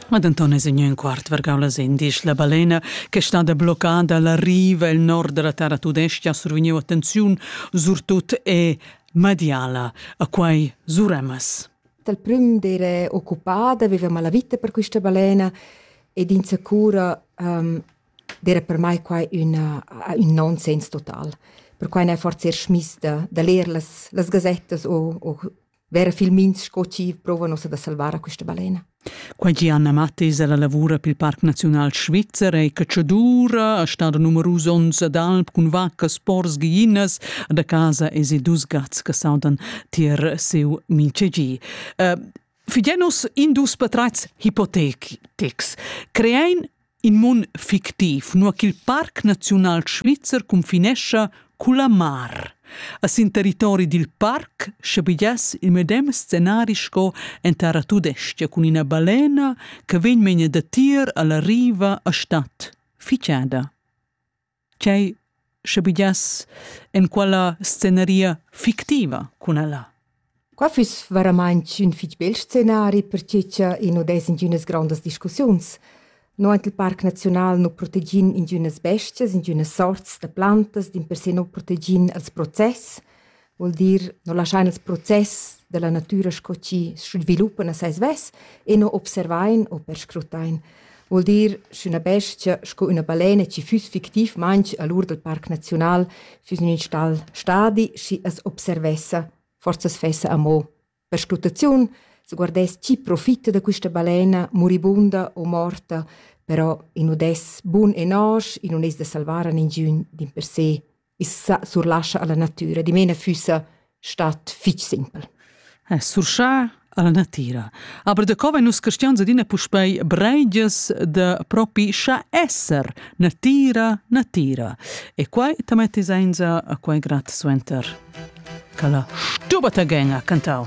Ma denton es in quart vargau las endisch la balena che stada bloccada la riva el nord dalla terra tudestga survegniu attenziun surtut e mediala a quei suremas. Dal prim d'ere occupata avevamo la vita per questa balena ed insicura um, era per me quai una, un nonsens total. Per quai ne forse er schmis da, da leer las, las gazettas o, o Vera filmins sco chi prova nossa da salvar a questa balena. Quai che Anna Mattis è la lavura pel Parc Naziunal Svizzer è cacciadura, a stado numerus ons d'alp cun vaccas, pors, ghiinas, da casa es i dus gats che saudan tier seu minchegi. Uh, Figenos indus patreits hypothetics creein In mun fictiv, nua ch'il Parc naziunal svizzer cunfinescha culla mar. A sin territori dil parc schabegiass il medem scenari sco en terra tudestga cun ina balena che vegn megne datier alla riva a statt, ficciada. tgei sche buglias en quella sceneria fictiva cun ella? Qua füss veramaintg ün fich bel scenari, perche cha i nu dess ingünas grandas discussiuns. No aint il Parc Naziunal nu protegin ingünas bestias, ingünas sorts da plantas, dimpersè nu protegin els process. Vuol dir, no laschain ils process della natüra sco chi sviluppan a sai svess e no observain o perscrutain. Vuol dir, sch'üna bestia sco üna balena chi füss fictiv manch a l'ur dal Parc Naziunal füss ün in stal stadi, schi as observessa, forsa as fessa amo. Perscrutaziun sguardess chi profita da quista balena muribunda o morta, però i nu dess bun e nosch, i nun es da salvar a ningiün dimpersè. I sa surlascha a la natüra, dimena füssa stat fich simpel. Eh, surschar alla natira. Aber da co vegn nus cristians adina puspei breigias da propi scha esser natira, natira. E quai ta metti sainza a quai grat suenter. Ca la stuba ta genga cantau.